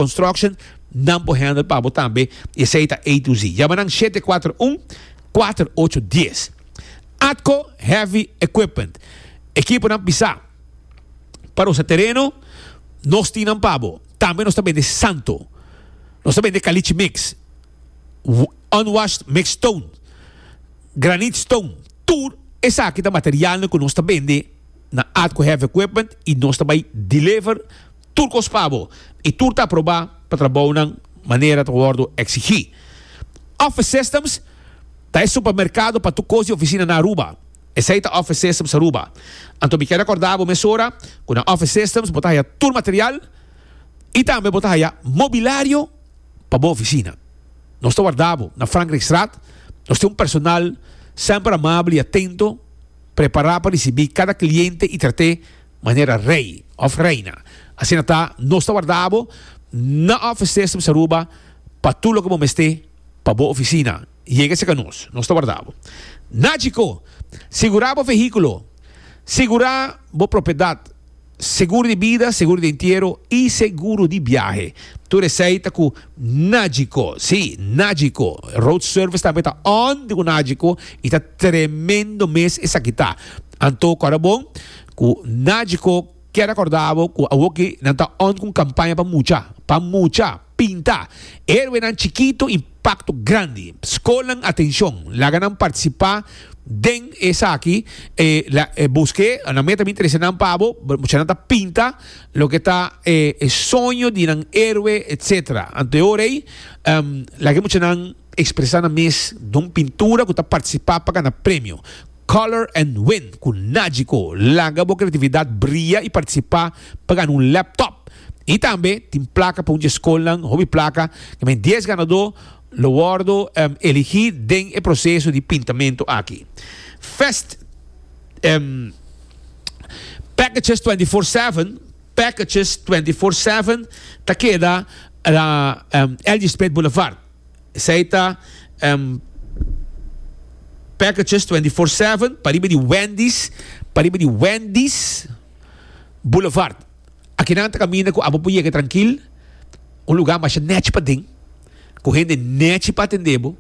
Construction nan por handle pa bo tambe y esey ta A to Z. Yama nan shete cuater un cuater ocho dies. Atco Heavy Equipment ekipo nan pisa pa rosa tereno nos tin nan pa bo. Tambe nos ta bende santo. Nos ta bende caliche mix, unwashed mixed stone, granite stone. Tur esaki ta materialnan cu nos ta bende na Atco Heavy Equipment y nos ta bay deliver. Tur kos pa bo i tur ta aprobá pa trabounan manera ta wòrdu eksigí. Office Systems ta e supermerkado pa tur kos di ofisina na Aruba. Esei ta Office Systems Aruba. Anto mi kier akordá bo mesora ku na Office Systems bo ta haya tur material i tambe bo ta haya mobilario pa bo ofisina. Nos ta wardá bo na Frankrijkstraat. Nos tin un personal semper amabel i atento, prepará pa risibí kada kliente i trat'é Manera rei of reina. Asina ta, nos ta warda bo na offices di Aruba pa tur loke bo mester pa bo oficina. Yega cerca nos. Nos ta warda bo. Na Chicó, segura bo vehiculo, segura bo propiedad, seguro di bida, seguro di entiero y seguro di biahe. Tur esey ta cu Nagico. Si, Nagico. Road service tambe ta on di cu Nagico y ta tremendo mes esaki ta. Anto cora bon. Ku Nagico kier acorda bo ku awoki nan ta on ku un campaña pa mucha, pa mucha, pinta heroenan chikito i pacto grandi. Scolnan atencion, laga nan participa den esaki, e la e busque nan meta mi interesa nan pa bo, mucha nan ta pinta loke ta e e soño di nan heroe etc. Anto e ora ei laga e mucha nan expresa nan mes don pintura ku ta participa pa gana premio. Color and Win cu Nagico. Laga bo creatividad bria y participa pa gana un laptop. Y tambe tin placa pa un dje scolnan, hopi placa. Caminda dies ganador lo wordo eligi den e proceso di pintamento aki. Fest Packages Twenty Four Seven, Packages Twenty Four Seven, ta keda na Elgee Spit Boulevard. Esei ta em packages twenty four seven pa riba di Wendy's pa riba di Wendy's Boulevard. Aki nan ta kaminda ku abo por yega trankil, un lugá masha nèchi paden, ku hende nèchi pa atendé bo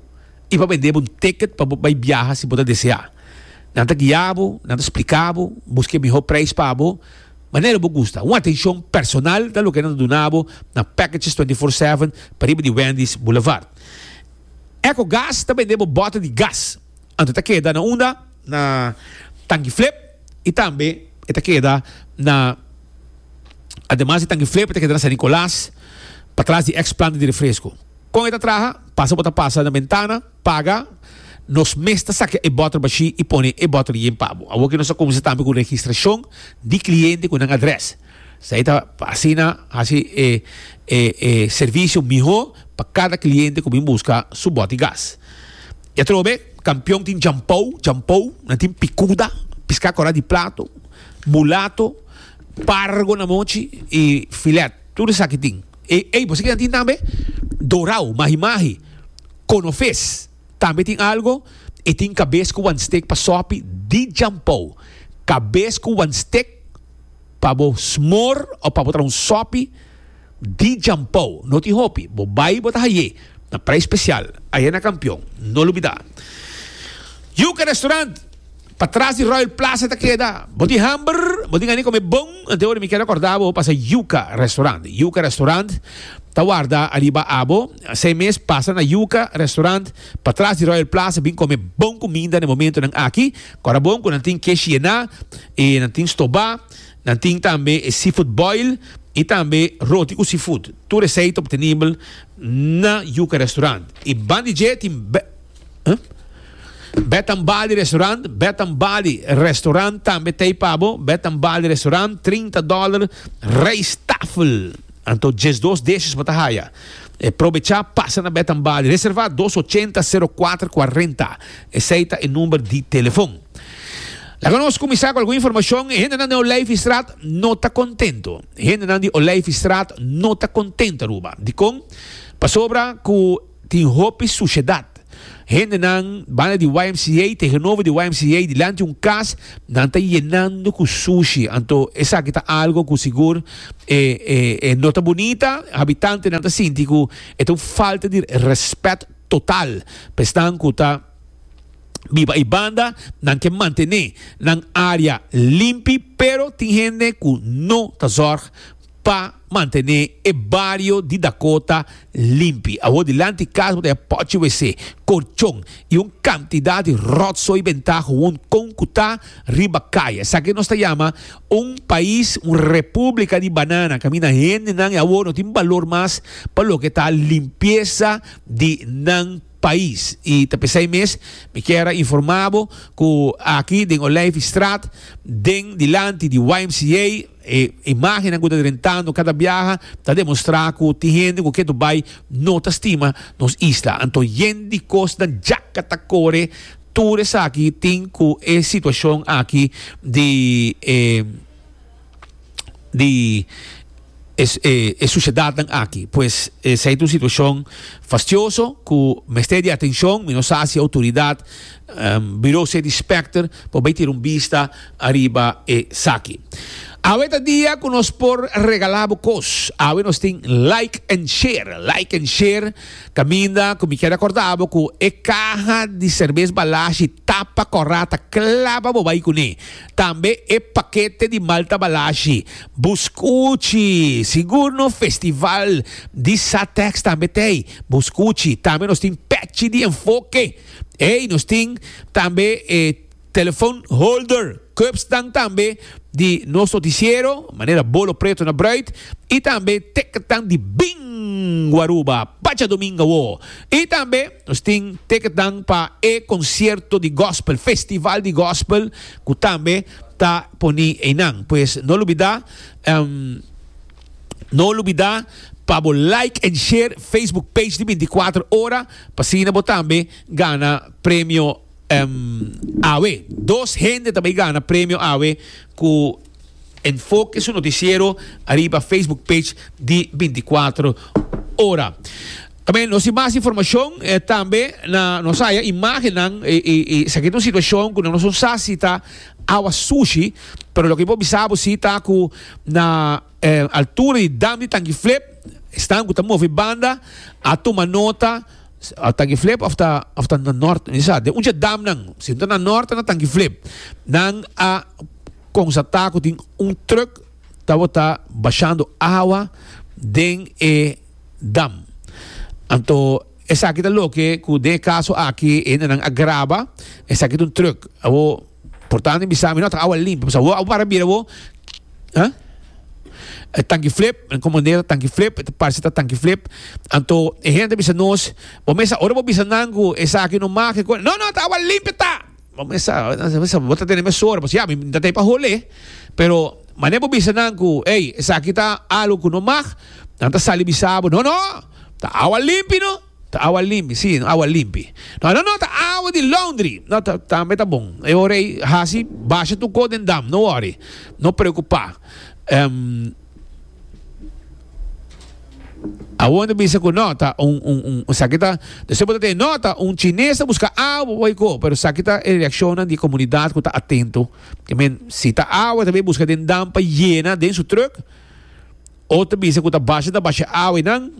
i pa bendé bo un ticket pa bo bai biaha si bo ta deseá. Nan ta guiá bo, nan ta spliká bo, buska e mihó preis pa bo. Manera bo gusta. Un atencion personal ta loke nan ta duna bo na Packages Twenty Four Seven pariba di Wendy's Boulevard. Echo Gas ta bende bo bota di gas, anto e ta keda na unda? Na Tanki Flip y tambe e ta keda na Ademas di Tanki Flip e ta keda na San Nicolas patras di ex planta di refresco. Con e ta traha? Pasa bo ta pasa na bentana. Paga, Nos mes ta saca e bottle bashi y pone e bottle yin pa bo. Awor que nos a cuminsa tambe cu registracion di cliente cu nan adres. Esai ta pa asina haci e e servicio miho pa cada cliente cu bin busca su boti gas. Y atrobe, Campeon tin jampou, jampou, nan tin picuda, pisca cora di plato, mulato, pargo na mochi y filet. Tur esaki tin. E ey, bo sa kinan tin tambe? Dorao, mahi mahi, konofes. Tambe tin algo, e tin kabes ku wan stek pa sòpi di djampou. Kabes ku wan stek pa bo smor òf pa bo traha un sòpi di djampou. No tin hopi. Bo bai bo ta haye na prei spesial. Ayana Kampion. No lo bida. Yuka Restaurant. Pa tras di Royal Plaza ta keda. Bo tin hamber? Bo tin gana di come bon? Antehoras mi kier recorda bo pasa Yuca Restaurant. Yuca Restaurant ta warda ariba abo. Asai mes pasa na Yuca Restaurant pa tras di Royal Plaza bin come bon cuminda na e momentonan aki. Corabon cu nan tin kesh yena y nan tin stoba. Nan tin tambe e seafood boil y tambe roti cu seafood. Tur esey ta obtenibel na Yuca Restaurant. Y banda di dje tin. Bed and Bali restaurant, Bed and Bali restaurant tambe tei pabo, Bed and Bali restaurant 30 dollar rijsttafel. Anto just dos dishes bata haya. E probecha pasa na Bed and Bali. Reserva 280 0440. Esei ta e number di telefon. La con nos cominsar con algun informacion. Hende nan di Olijfstraat no ta contento. Hende nan di Olijfstraat no ta contento Aruba. Di con? Pasobra cu tin hopi sushedad. Hendenan banda di YMCA tegenover di YMCA dilanti un cas nan ta yenando cu sushi anto esaki ta algo cu sigur e e no ta bunita. Habitantenan ta sinti cu e ta un falta di respet total pa esnan cu ta biba ey banda. Nan ke mantene nan area limpi pero tin hende cu no ta zorg. pa mantené e bario di Dakota limpi. Awor dilanti kas bo ta haya pòchi wc, korchon i un kantidat di ròtsoi bentá houn kon ku ta riba kaya. Esaki nos ta yama un pais, un repúblika di banana, kaminda hendenan e awor no tin balor mas pa loke ta limpiesa di nan pais. I ta p'esei mes mi kier a informá bo ku aki den Olijfstraat, den dilanti di YMCA, E imágennan ku ta rentando kada biaha ta demostrá ku tin hende ku ke tur bai no ta stima nos isla. Anto yen di kosnan djaka ta kore. Tur esaki tin ku e situashon aki di e di e sushedatnan aki. Pues esei ta un situashon fastioso ku mester di atenshon. Mi no sa si outoridat. Bureau City Inspector por bay tira un bista ariba esaki. Awe ta dia cu nos por regala bo cos. Awe nos tin Like and Share. Like and Share caminda cu mi kier acorda bo cu e caha di cervez Balashi tapa corra ta claba bo bay cune. Tambe e paquete di Malta Balashi, buscuchi, sigur no festival di Satex tambe tey, buscuchi. Tambe nos tin Pechi di Enfoke. Ey nos tin tambe e telefon holder, cupsnan tambe di nos noticiero, manera bolo preto na bruid, y tambe ticketnan di Bingo Aruba pa djadomingo awo. Y tambe nos tin ticketnan pa e concierto di gospel, festival di gospel, cu tambe ta poni eynan. Pues no lubida. No olubida pa bo like en share Facebook page di binticuatro ora pa asina bo tambe gana premio awe. Dos hende ta bay gana premio awe cu enfoke su noticiero ariba Facebook page di binticuatro ora. Amen nos tin mas informacion tambe na nos haya imagennan esaki ta un situacion cu nos no sa si ta awa sushi pero loke bo bisa bo si ta cu Na e altura di dam di tanki flip, e stam ku ta movi banda a tuma nota a tanki flip of ta of ta na nort. Mi sa den un dje damnan, si no ta na nort ta na tanki flip, nan a konsatá ku tin un trùk tabata bashando awa den e dam. Anto esaki ta loke ku den e kaso aki e hende nan a graba esaki ta un trùk. Awor. Por tanto e bisa mi, No ta awa limpi, pasobra bo a para bira bo, ha? E tanki flip, nan comprende e ta tanki flip, e ta parse ta tanki flip. Anto e hende a bisa nos, Bo mester, ora bo bisa nan cu esaki no mag, e cos, No, no, ta awa limpi ta! Bo mester, nan mester, bo ta tene mesora, pasobra ya, mi no ta tei pa hole. Pero manera bo bisa nan cu, Ey, esaki ta algo cu no mag, nan ta sali bisa bo, No, no, ta awa limpi, no! Ta awa limpi, si, awa limpi. No, no, no, ta awa di laundry. No, ta, tambe ta bon. E ora ei hasi, basha tu ko den dam, no wori, no preocupa. Ehm, awor ta bisa cu no, ta un, un, un, esaki ta, ta supo ta te, no, ta un chines ta busca awa pa bay ko, pero esaki ta e reaccionnan di e comunidad cu ta atento. Te men, si ta awa, ta bay busca den dam pa yena den su truck. Otro bisa cu ta basha ta basha awa y nan,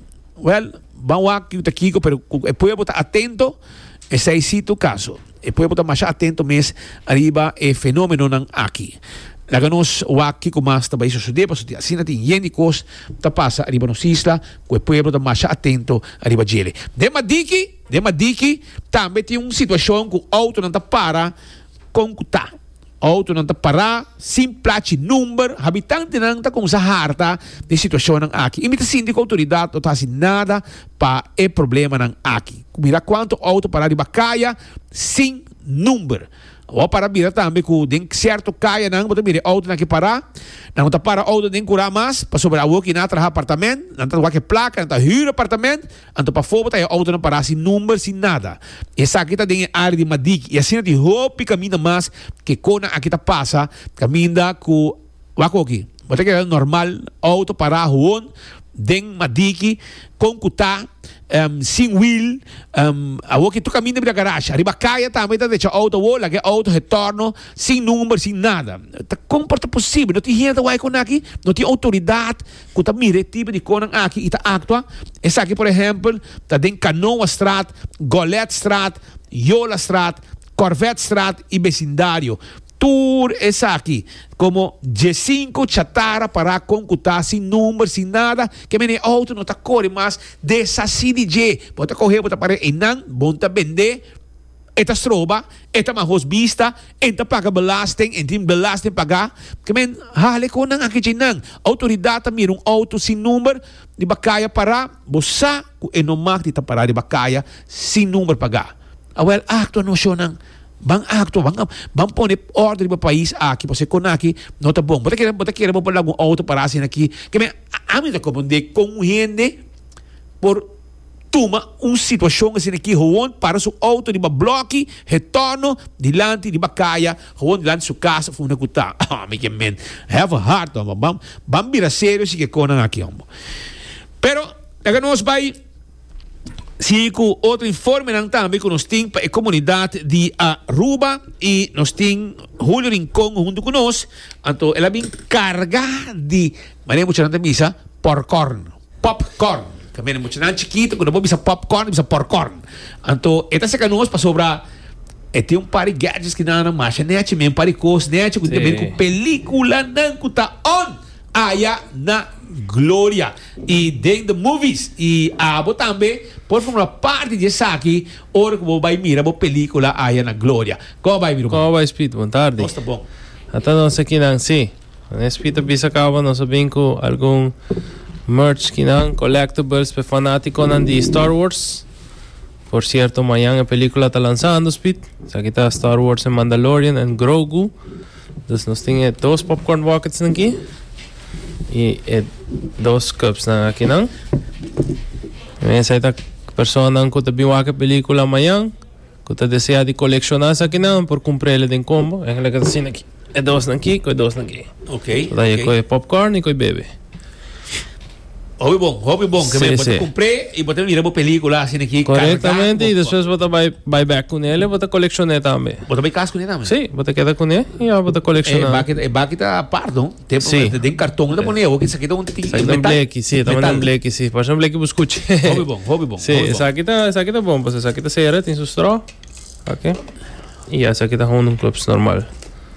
Well, ban wak yu ta kico, pero cu e pueblo ta atento, esey si tu caso. E pueblo ta masha atento mes ariba e fenomenonan aki. Laga nos wak kico mas ta bay sucede, pasobra asina tin yen di cos ta pasa ariba nos isla cu e pueblo ta masha atento ariba djele. Den Madiki, den Madiki tambe tin un situacion cu autonan ta para con cu ta. Outonan ta pará sin plachi number. Habitantenan ta kuminsá harta di e situashonnan aki i mi ta sinti ku outoridat no ta hasi nada pa e problemanan aki. Ku mira kuantu outo pará riba kaya sin number. Awor a para bira tambe ku den sierto kayanan bo ta mira e outonan aki pará. Nan no ta para outo den kurá mas pasobra awor ku i na a traha apartamènt, nan ta wak e plaka, nan ta hür apartamènt. Anto pafó bo ta e outonan pará sin number, sin nada. Esaki ta den e área di Madik i asina tin hopi kaminda mas ke kona aki ta pasa, kaminda ku wak oki bo ta keda normal outo pará hoon den Madiki kon ku ta em sin wiel em awor ke tur kaminda bira garashi. Ariba kaya tambe ta decha outo awor laga e outo retòrno sin number, sin nada. Ta kon por ta posibel? No tin hende ta wak e konaki? No tin outoridat? ku ta mira e tipo di konan aki i ta aktua. Esaki por ehèmpel ta den Kanoastraat, Goletstraat, Yolastraat, Korvetstraat i besindario. Tur esaki komo diesinko chatara pará kon ku ta sin number, sin nada, ke mene e outo no ta kore mas, desasí di dje. Bo ta koh'é, bo ta par'é einan, bon ta bend'é. E ta stroba, e ta mahos bista, e ta paga belasting, e tin belasting pagá. Ke men hale ku nan aki djinnan? Outoridat ta mira un outo sin number di bakaya pará, bo sa ku e no mak di ta pará di bakaya sin number pagá. Awèl aktua nocionnan. Ban aktua, ban ban pone orde riba pais aki pasobra kon aki no ta bon. Bo ta kere bo ta kere bo por laga un outo pará asina aki? Ke men ami ta koprondé kon un hende por. tuma un situacion asina aki, gewoon para su auto riba bloki, retorno, dilanti riba kaya, gewoon dilanti su casa fu na ku ta, oh mi ke men, have a heart hombo, ban ban bira serio si ke kon nan aki hombo. Pero laga nos bai sigui ku otro informenan tambe ku nos tin pa e komunidat di Aruba i nos tin Julio Rincon huntu ku nos, anto el a bin karga di, mane muchanan ta bisa, porkòrn. Pop corn, ta mira muchanan chikito cuando bo bisa pop corn bisa por corn, anto e ta cerca nos pasobra e tin un par di gadgets ki nan a masha nechi men, un par di cos nechi cu tin que bira cu peliculanan cu ta on aya na Gloria y den the movies y abo tambe por forma parti di esaki ora cu bo bay mira bo pelicula aya na Gloria. Como bay mi ruman? Como bay Speed? Bon tardi. Nos ta bon. Ata nos aki nan si. Nes fita bisa caba nos a bin cu algun merch kinan, collectibles, p'e fanaticonan di Star Wars. Por cierto, mañan e pelicula ta lanzando, Speed. Esaki ta Star Wars en Mandalorian en Grogu. Dus nos tin e dos popcorn buckets nan ki. Y e dos cups nan akinan. Esaki ta personanan cu ta bin wak e pelicula mañan. Cu ta desea di colecciona esakinan por cumprele den combo. Engle cu ta asina aki. E dosnan aki cu e dosnan aki. Ok, ok. Taye cu e popcorn y cu e bebe. Hopi bon, hopi bon. Si, Bo ta si. cumpre y bo ta mira bo pelicula asina aki. carga Correctamente. Y bo- despues bo ta bay, bay back cune el y bo ta colecciona tambe. Bo ta bay cas cune tambe? Si, bo ta keda cune y ya bo ta E colecciona. baki, e baki ta apart, no? Sí. Den karton ta pone hopi esaki ta un tin Esaki ta un bleki, sí, ta un bleki, sí. Parse un bleki bo skuchi. Hopi bon, hopi bon. Sí, esaki ta esaki ta bon, pues esaki ta sera, tin su strò. Ok. I ya esaki ta houn un clubs normal.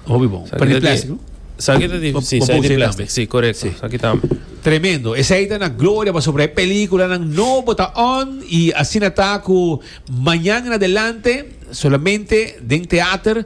Hopi bon. Pero di plastic, no? Esaki ta di, sí, esaki di plastic, sí, correcto. Esaki ta. Tremendo. Esaki ta na gloria pa sobre película nan no bota on i asina ta ku mañan en adelante solamente den teater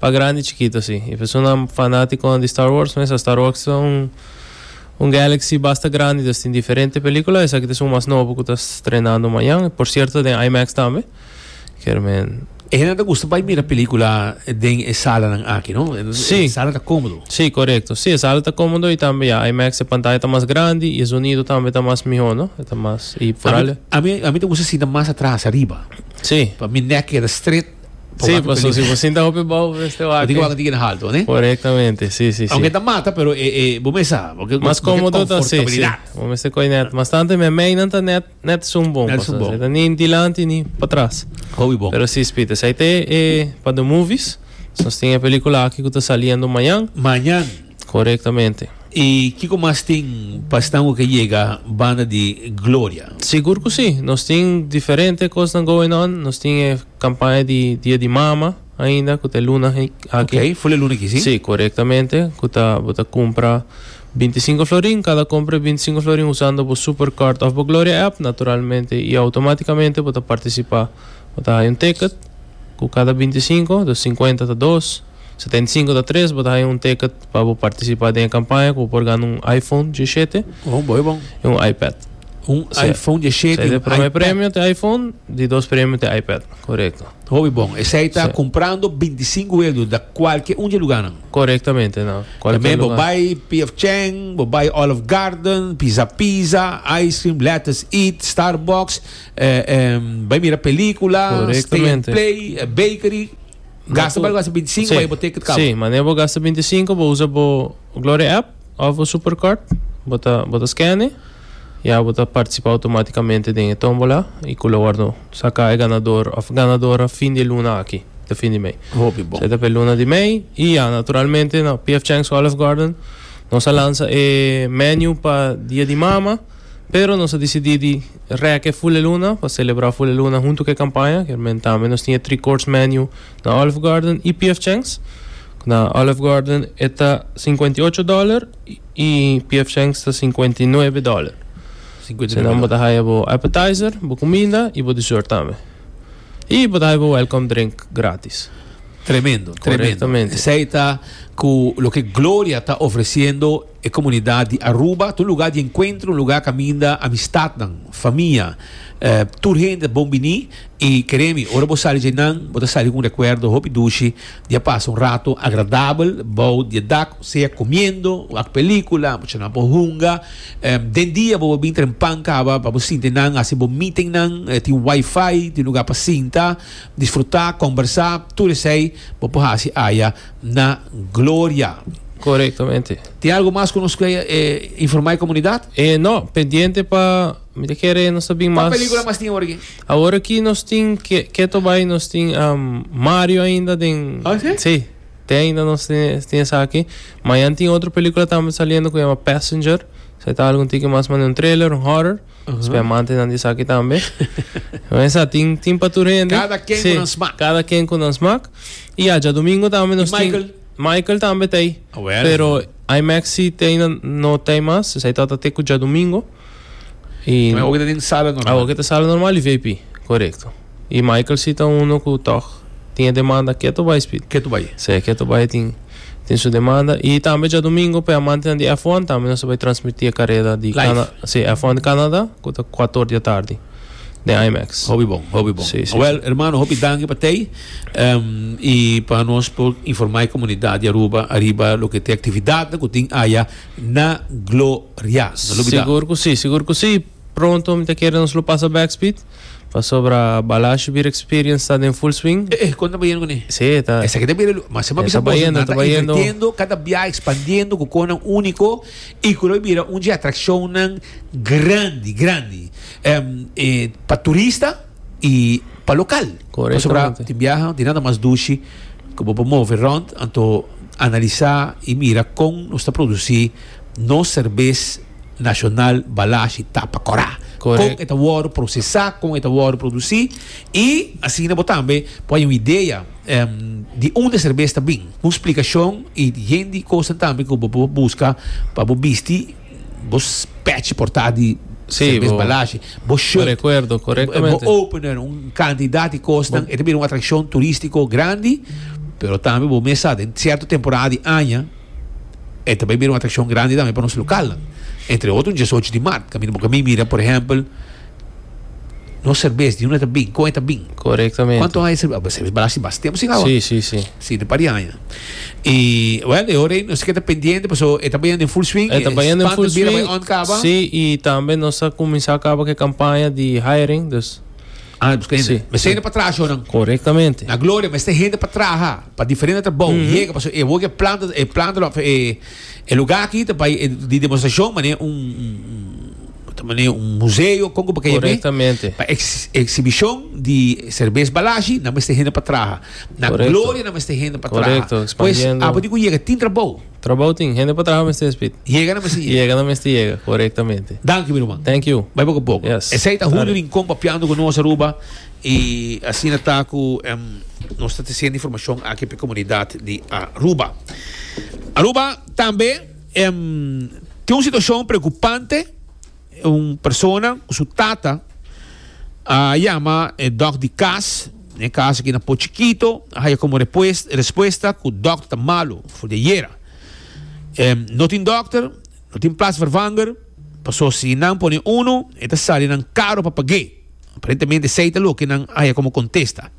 Pa grandi y chikito si. E personan fanaticonan di Star Wars mes a sta rokstra un un Galaxy basta grandi ta tin diferente pelicula. Esaki ta esun mas nobo cu ta strenando mañan. Por cierto ta den IMAX tambe. Kier men. E hende ta gusta bay mira pelicula den e salanan aki no. Si. E sala ta comodo. Si corecto. Si e sala ta comodo y tambe ya IMAX e pantaya ta mas grandi y e zonido tambe ta mas miho no. E ta mas y foral. Ami ami ta gusta sinta mas atras ariba. Si. Pa mi nek keda stret. Sí, pues si vos sinta hopi bou de este wak. Tiki wak tiki na halto, né? Correctamente, sí, sí, sí. Aunque ta mata, pero eh, eh, vos me sa, porque Mas cómodo ta, sí, sí. Vos me se coi net. Mas tanto me mei nan ta net, net zoom bon. Net zoom bon. Ni in dilanti, ni pa tras. Hopi bon. Pero sí, Spita, sai te, eh, pa de movies, nos tiene película aki ku ta saliendo mañan. Mañan. Korektamente. I kiko mas tin pa Stanwell ke yega banda di gloria? Sigur ku si. Nos tin diferente kosnan going on. Nos tin e kampaña di Dia di Mama ainda ku ta e luna aki. Ok, ful e luna aki si? Si, korektamente. Ku ta bo ta kumpra binti i sinku florin. Kada kompra di binti i sinku florin usando bo Super Card òf bo Gloria app, naturalmente i outomátikamente bo ta partisipá. Bo ta haña un teket ku kada binti i sinku, dus sinkuenta ta dos. Setenta i sinku ta tres, bo ta haña un ticket pa bo partisipá den e kampaña ku bo por gana un iPhone djishete Oh, bo e bon. i un iPad. Un Sea, iPhone djishete Sea, i di un prome iPad. premio ta iPhone, di dos premio ta iPad, korekto. Hopi bon. Esei ta Sea. kumprando binti i sinku euro da kualke un dje lugánan. Korektamente, na kualke Tambe bo lugá. bai PF Chang, bo bai Olive Garden, Pizza Pizza, Ice Cream, Let's Eat, Starbucks, eh, eh, bai mira pelíkula, Stay and Korektamente. Play, eh, Bakery. Gasta pa algo binti sinku pa e bo teken kaba. Sí, manera bo gasta binti sinku bo usa bo Glory app of bo Supercard, bo ta bo ta scanne ya bo ta participa automaticamente den e tombola y cu lo wordo saca e ganador of ganadora fin di luna aki, ta fin di mei. Hopi bon. Sa ta pe luna di mei y ya naturalmente na PF Chang's Olive Garden nos a lansa e menu pa Dia di Mama. Pero nos a disidí di rèk e Fuleluna pa selebrá Fuleluna huntu ku e kampaña. Kermen tambe nos tin e Three Course Menu na Olive Garden i PF Chang's. Na Olive Garden e ta sinkuenta i ocho dòler i PF Chang's ta sinkuenta i nuebe dòler. Asinanan bo ta haya bo appetizer, bo kuminda i bo dessert tambe. I bo ta haya bo welcome drink grátis. Tremendo, tremendo. Korektamente. Esei ta ku loke Gloria ta ofresiendo. E komunidat di Aruba ta un lugá di enkuentro, un lugá kaminda amistatnan, famia, tur hende ta bon biní i keré mi ora bo sali dje nan bo ta sali ku un rekuerdo hopi dushi di a pasa un ratu agradabel bou di e dak sea kumiendo wak pelíkula mucha nan por hunga den dia bo por bin tren pan kaba pa bo sinti nan hasi bo meetingnan tin wifi tin lugá pa sinta disfrutá kombersá tur esei bo por hasi aya. na Gloria. Korektamente. Tin algu mas ku nos ke informá e komunidat? E no, pendiente pa mi ta kere nos ta bin mas. Kua pelikula mas tin awor aki? Awor aki nos tin ke keto bai nos tin Mario ainda den. Oh si? Si, te ainda nos tin esaki. Mañan tin otro pelikula tambe saliendo ku yama Passenger, esaki ta algu un tiki mas manera un trailer, un horror. Spamante nan di esaki tambe. Nan sa tin tin pa tur hende. Cada ken sí, ku nan smak. Cada ken ku nan smak. I ya domingo tambe nos tin. Michael? Michael tambe tei. Oh, well. Pero IMAX si tei nan no tei mas. Sesa i tabata te ku ja domingo. I. Awor ke ta tin sala normal. Awor ke ta sala normal i VIP. Korekto. Y Michael si ta uno cu tog tin e demanda keto bay Speed. Keto bay. Sí, keto bay tin tin su demanda. Y tambe djadomingo p'e amantenan di F1 tambe nos ta bay transmiti e careda di Cana Live. Sí, F1 di Canada cu ta cuato or di atardi den IMAX. Hopi bon, hopi bon. Sí, sí, Wel, sí. hermano, hopi danki pa t'ey em, y pa nos por informa e comunidad di Aruba ariba loke t'e actividadnan cu tin aya na Gloria. No lo bida. Sigur cu sí, sigur cu sí. Pronto mi ta kere nos lo pasa back speed pasobra Balashi Beer Experience ta den full swing. Eh eh konta bayendo kuné. Sí e ta. Esaki ta bira mas sema bisa boso nan ta invirtiendo cada biaha expandiendo cu cosnan unico y cu lo bira un dje atraccionnan grandi grandi pa turista y pa local pasobra tin biaha tin nada mas dushi cu bo por move rond anto analisa y mira con nos ta produci. Nos serbes nashonal balashi ta pa kora. Kon e ta wòrdu prosesá, kon e ta wòrdu produsí i asina bo tambe por haña un idea di unda e serbes ta bin. Un splikashon i yen di kosnan tambe ku bo por buska pa bo bisti bo pèchi por ta di serbes balashi, bo short, bo opener, un kantidat di kosnan. E ta bira un atrakshon turístiko grandi, pero tambe bo mes sa den sierto temporada di aña. E ta bai bira un atrakshon grandi tambe pa nos lokalnan. Entre otro un diesocho di mart. Kaminda bo kaminda mira, por ehèmpel, nos serbes, di unda ta bin? Kon e ta bin? Korektamente. Kuantu aña e serbes? Bo serbes balasi bas tempu sin awa. Si, si, si. Si, ta un par di aña. I, wèl, e ora ei nos keda pendiente, pasobra e ta bayanda den full swing. E ta bayanda den full swing. E spannan bira bai ònt kaba. Si, i tambe nos ta kuminsá kaba ku e kampaña di hiring. Dus, Ah, busca hende. Sí, Mester sí. hende pa traha shonan. Correctamente. Na Gloria, mester hende pa traha, pa diferente trabou. Yega, paso e woke planta, e planta lo, e, e lugar aquí, te bai, e, di demonstracion, mané un, un, un, te mané un museo, conco pa que Correctamente. Pa ex, exhibition di cerveza balashi, na mester hende pa traha. Na Correcto. Gloria, na mester hende pa traha. Correcto, Pues, expandiendo. apa di cu yega, tin trabou. Trabou tin, hende pa traha mester spit. Yega nan mester yega. Yega nan mester yega, korektamente. Danki mi ruman. Thank you. Bai poko poko. Yes. Esei ta Julio Rincon papiando ku nos Aruba i asina ta ku nos ta tresendo informashon aki pa e komunidat di Aruba. Aruba tambe tin un situashon preokupante. Un persona cu su tata a yama e dog di cas, na e cas aki na Pochi Quito, a haya como respuesta cu dokter ta malo for di ayera. No tin dokter, no tin plaatsvervanger, paso si nan pone uno e ta sali nan caro pa pag'e. Aparentemente esey ta loke nan haya como contesta.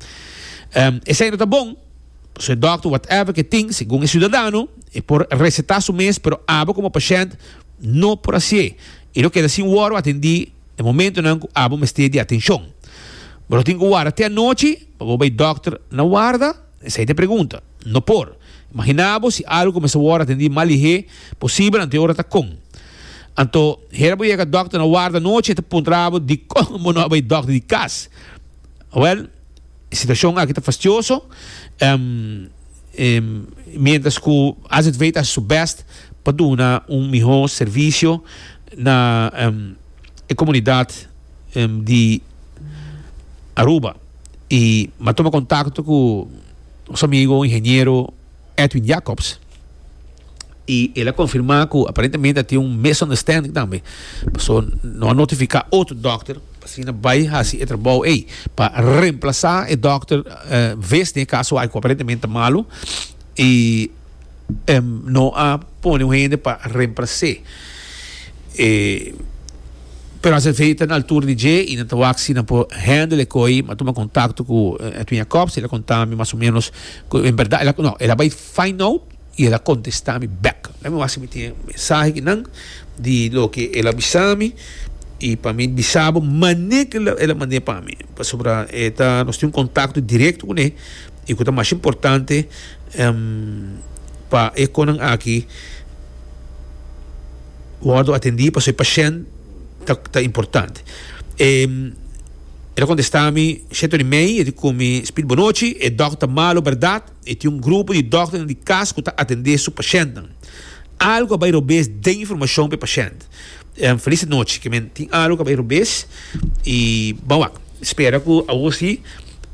Esey no ta bon. So e dòkter whatever ke tin, segun e siudadano, e por resetá su mes, pero abo komo pashènt no por hasié i lo keda sin wòrdu atendí e momentonan ku abo mester di atenshon. Bo lo tin ku warda te anochi pa bo bai dòkter na warda? Esei ta e pregunta. No por. Imaginá bo si algu kumesa wòrdu atendí mal lihé posibel anto e ora ta kon. Anto, hera bo yega dòkter na warda anochi e ta puntra bo dikon bo no a bai dòkter di kas. Wèl, E situashon aki ta fastioso, mientras ku azv ta hasi su bèst pa duna un mihó servisio na e komunidat di Aruba i m'a tuma kontakto ku nos amigo ingeniero Edwin Jacobs y el a confirma cu aparentemente a tin un misunderstanding tambe paso no a notifica otro dokter asina bay haci e trabao ey pa reemplaza e dokter ves den e caso aki cu aparentemente ta malo y no a pone un hende pa reemplace pero as efecto ta na altura di dje y nan ta wak si nan por handle e coi mi a tuma contacto cu Edwin Jacobs y el a conta mi mas o menos Cu en berdad el a, no, el a bay find out y el a contesta mi back. Dame a wasi mi tin e mensahe kinan di loke el a bisa mi y pa mi bisa bo mane cu el a mande pa mi pasobra e ta, nos tin un contacto directo cu ne y cu ta mas importante pa e conan aki wordo atendi pasobra e pashent ta importante. E ta contesta mi, She Tony May, e di cu mi, Speed Bonochi, e dok ta malo berdad, e tin un grupo di dokternan di cas cu ta atende su pashentnan. Algo a bay robes den informacion pa e pashent. Feliz di nochi, ke men tin algo cu a bay robes y bo wak, spera cu awo si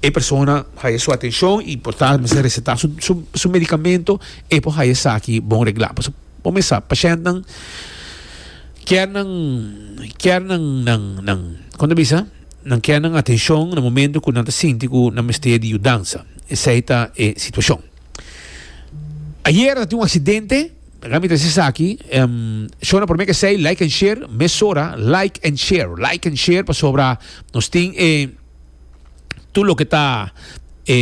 e persona haya su atencion y por ta mester receta su medicamento, e por haya esaki bon regla. Bo mes sa, pashèntnan kier nan kier nan nan nan kon ta bisa nan kier nan atenshon na momentu ku nan ta sinti ku nan mester di yudansa. Esei ta e situashon. Ayera ta tin un aksidente, mi ta si esaki, shona promé ku esei like and share, mesora like and share, like and share pasobra nos tin e. tur loke ta e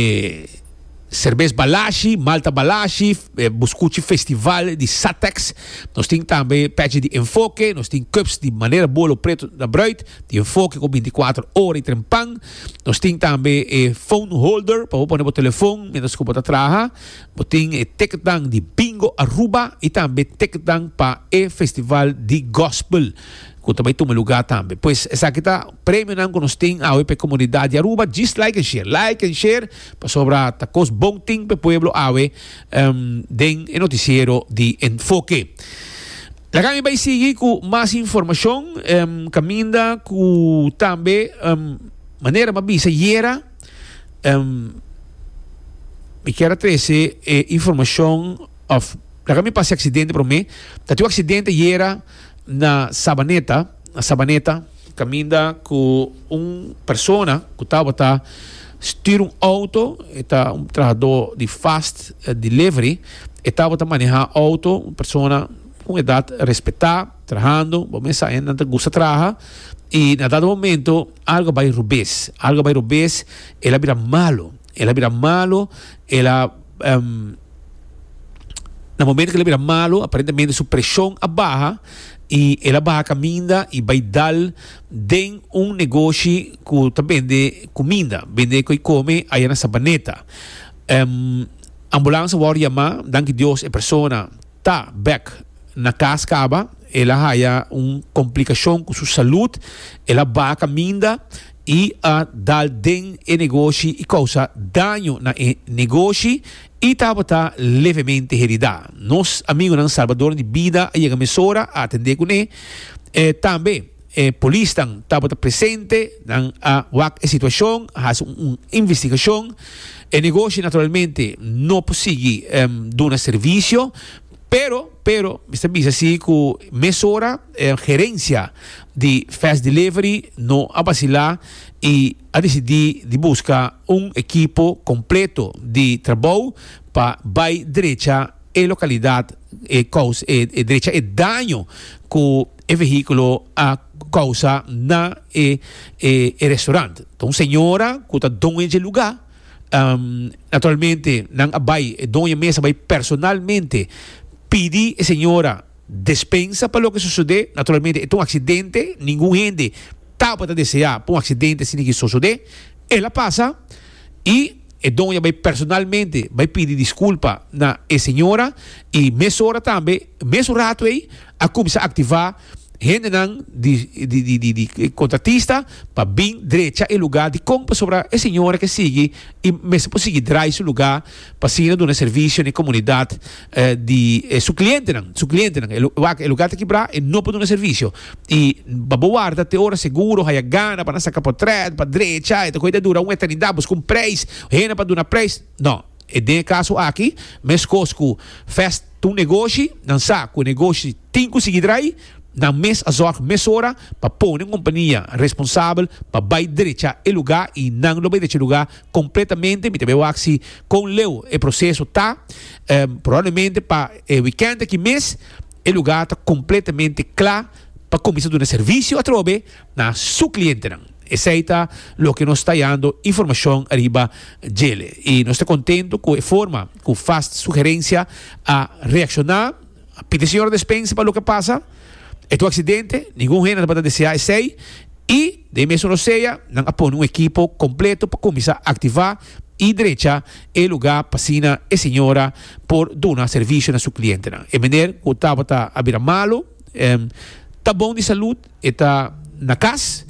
serbes balashi, malta balashi, e bo skuchi festival di Satex, nos tin tambe pèchi di enfoke, nos tin cups di manera bo lo pretu ta brùit, di enfoke ku binti kuater ora i trempan, nos tin tambe e phone holder pa bo pone bo telefon mientras ku bo ta traha, bo tin e teketnan di Bingo Aruba i tambe teketnan pa e festival di gospel. Cu ta bay tuma lugar tambe. Pues esaki ta premionan cu nos tin awe pa e comunidad di Aruba. Djis like en share. Like en share pasobra ta cos bon tin pa e pueblo awe den e noticiero di Enfoke. Laga mi bay sigui cu mas informacion caminda cu tambe manera mi a bisa yera mi kier a trece e informacion of laga mi pasa e accidente prome. Ta tin un accidente yera. Na Sabaneta, na Sabaneta, caminda cu un persona cu tabata stuur un auto, e ta un trahador di Fast Delivery, e tabata maneha auto, un persona cu un edad respeta, trahando, bo mes sa e nan ta gusta traha, y na dado momento algo a bay robes, algo a bay robes, el a bira malo. El a bira malo, el a em, na momento que el a bira malo, aparentemente su presión a baha y el a baha caminda y bay dal den un negoshi cu ta bende cuminda, bende cu e come aya na Sabaneta. Em, Ambulance a worde yama, danki Dios e persona ta bek na cas caba, el a haya un complicacion cu su salud, el a baha caminda. i a dal den e negoshi i kousa daño na e negoshi i tabata levemente heridá. Nos amigunan salbadonan di bida a yega mesora a atendé kuné. Tambe e polisnan tabata presente, nan a wak e situashon, a hasi un investigashon. E negoshi naturalmente no por sigui duna servisio. Pero, pero, mi sta bisa si cu mesora e gerencia di Fast Delivery no a bacila y a decidi di busca un ekipo completo di trabou pa bay drecha e localidad e cous e drecha e daño cu e vehiculo a causa na e e restaurant. Ta un señora cu ta doña dje lugar. Um, naturalmente, nan a bai, e doña mes a bai personalmente pidi e señora despensa pa loke sosodé. Naturalmente, e ta un accidente, ningun hende tabata deseá pa un accidente asina aki sosodé. El a pasa i e doña bai personalmente bai pidi disculpa na e señora i mesora tambe, mesun ratu ei, a cuminsa activá. hendenan di di e kontratista pa bin drecha e lugá di kon pasobra e señora ke sigui i mester por sigui drai su lugá pa asina duna e servisio na e komunidat di su klientenan su klientenan wak e lugá ta kibrá e no por duna servisio i pa bo warda te ora seguro haya gana pa nan saka potret pa drecha e ta kohe ta dura un eternidat buska un preis hende pa duna preis no. E den e kaso aki, meskos ku Fest ta un negoshi, nan sa ku e negoshi tin ku sigui drai, nan mes a zòg mesora pa pone un kompania responsabel pa bai derecha e lugá i nan lo bai derecha e lugá kompletamente. Mi ta bai wak si kon leu e proseso ta. Probablemente pa e wikènt aki mes e lugá ta kompletamente kla pa kuminsá duna servisio atrobe. na su clientenan. Esei ta loke nos ta yando informacion riba djele y nos ta contento cu e forma cu Fast Sugerencia a reacciona, a pidi señora despensa pa loke pasa, e tu accidente, ningun hende no tabata desea esei y den e mes oro sea nan a pone un ekipo completo pa cuminsa activa y drecha e luga pasina e señora por duna servicio na su clientenan. E meneer cu tabata a bira malo, ta bon di salud. E ta na cas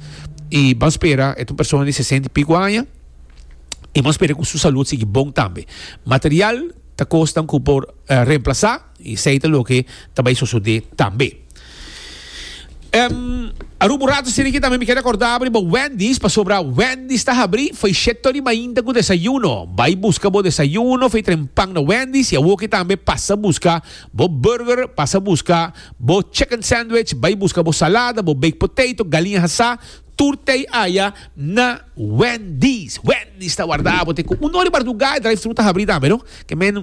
y bo a spera e ta un persona di sesenta y pico aña y bo a spera cu su salud sigui bon tambe. Material ta cosnan cu por reemplaza y esey ta loke ta bay sosode tambe. Aruba un rato striki tambe mi keda corda bo riba Wendy's pasobra Wendy's ta habri feycheto di mainta cu desayuno. Bay busca bo desayuno, feytren pan na Wendy's y awoke tambe pasa busca bo burger, pasa busca Bo chicken sandwich, bai buska bo salada, bo baked potato, galiña hasá, tur tei aya na Wendy's. Wendy's ta warda abo te ku un or di mardugá, e drive-thru ta habrí tambe no. Ke men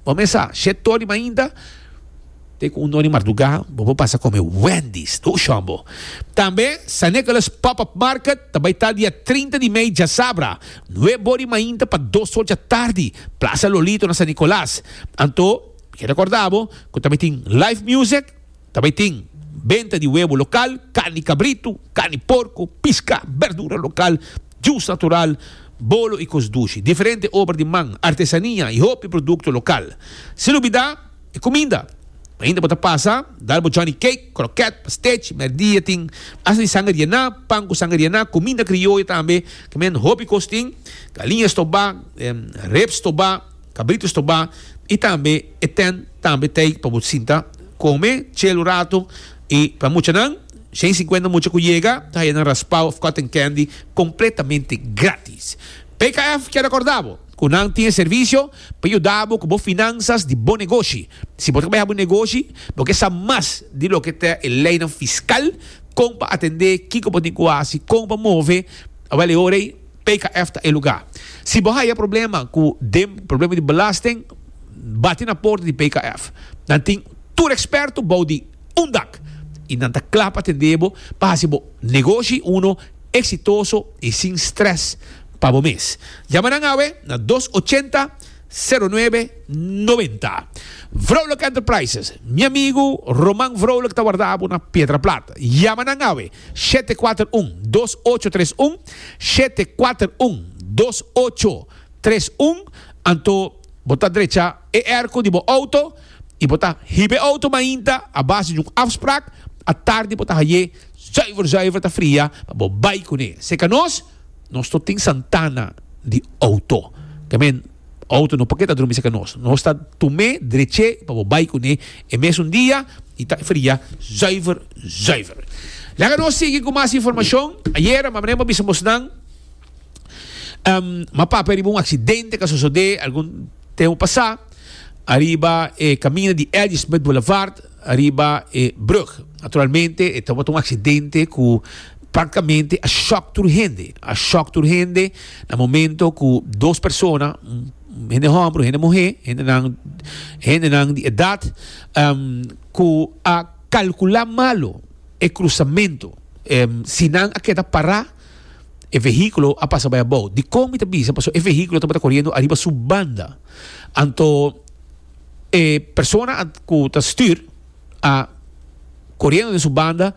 bo mesa shete tur di mainta te ku un or di mardugá bo por pasa kome Wendy's tur shon bo. Tambe San Nicholas Pop-up Market ta bai ta dia trinta di mei djasabra, nueb or di mainta pa dos or djatardi, Plaza Lolito na San Nicolas. Anto. Mi ke rekorda bo ku ta bai tin live music, ta bai tin benta di webo lokal, karni di kabritu, karni di porko, piska, berdura lokal, jus natural, bolo i kos dushi, diferente obra di man, artesania i hopi produkto lokal. Sin olbida e kuminda. Mainta bo ta pasa, dal bo Johnny Cake, krokèt, pastèchi, mèrdia tin asta di sanger yená, pan ku sanger yená, kuminda krioyo tambe, ke men hopi kos tin, galiña stobá, rep stobá. Kabritus to ba i tambe e tènt tambe t'ei pa bo sinta, kome, chel un ratu. I pa muchanan, shen sinkuenta mucha ku yega ta haya nan raspao òf kòten kendi kompletamente grátis. PKF kier akordá bo ku nan tin e servisio pa yuda bo ku bo finansas di bo negoshi. Si bo ta kabreha bo negoshi, bo ke sa mas di loke ta e leinan fiskal, kon pa atendé, kiko bo tin ku hasi, kon pa move, awèl e ora ei. PKF ta e lugá. Si bo haya problema ku dem, problema di belasting, bati na porta di PKF. Nan tin tur eksperto bou di un dak i nan ta kla pa atendé bo pa hasi bo negoshi uno eksitoso i sin strès pa bo mes. Yama nan awe na dos ochenta, seru nuebe, noventa. Vrolijk Enterprises, mi amigu Roman Vrolijk ta wardabo na Piedraplat. Yama nan awe. shete kuater un dos ocho tres un, shete kuater un dos ocho tres un, anto bo ta drecha e erko di bo outo i bo ta hiba e outo mainta a base di un afsprak, atardi bo ta haye zuiver zuiver ta fria pa bo bai kuné. Seka nos, nos no tin santana di outo. Te men. Auto no por ke ta drumi cerca nos. Nos ta tume dreche pa bo bai cune e mesun dia y ta fria zuiver zuiver. Laga nos sigui cu mas informacion. Ayera mama Nemo a bisa mos nan em ma papia riba un accidente ca sosode algun tempo pasa ariba e camina di L. G. Smith Boulevard. Ariba e brug. Naturalmente e tabata un accidente cu practicamente a shock tur hende. A shock tur hende na momento cu dos persona, hende homber cu hende muhe, hendenan, hendenan di edad, em, cu a calcula malo e cruzamento. Em, si nan a keda para, e vehiculo a pasa bai abao. Dicon mi ta bisa? Pasobra e vehiculo tabata coriendo ariba su banda. Anto. E persona ku ta stür a koriendo den su banda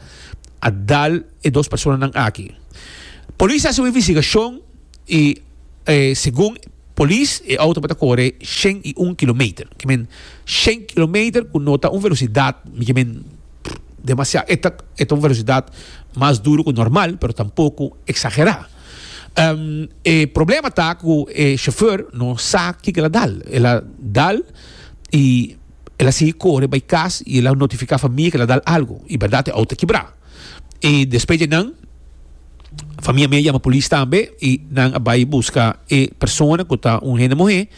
a dal e dos personanan aki. Polis a hasi un investigashon i segun polis e outo mester kore shen i un kilometer. I men shen kilometer ku no ta un velosidat i men demasiado. E ta un velosidat mas duru ku normal, pero tampoco eksagerá. E problema ta ku e shofèr no sa kiko el a dal. El a dal i el a sigui kore bai kas i el a notifiká famia ku el a dal algu. I bèrdat e outo a kibrá. I despues dje nan famia mia a yama polis tambe i nan a bai buska e persona ku ta un hende muhé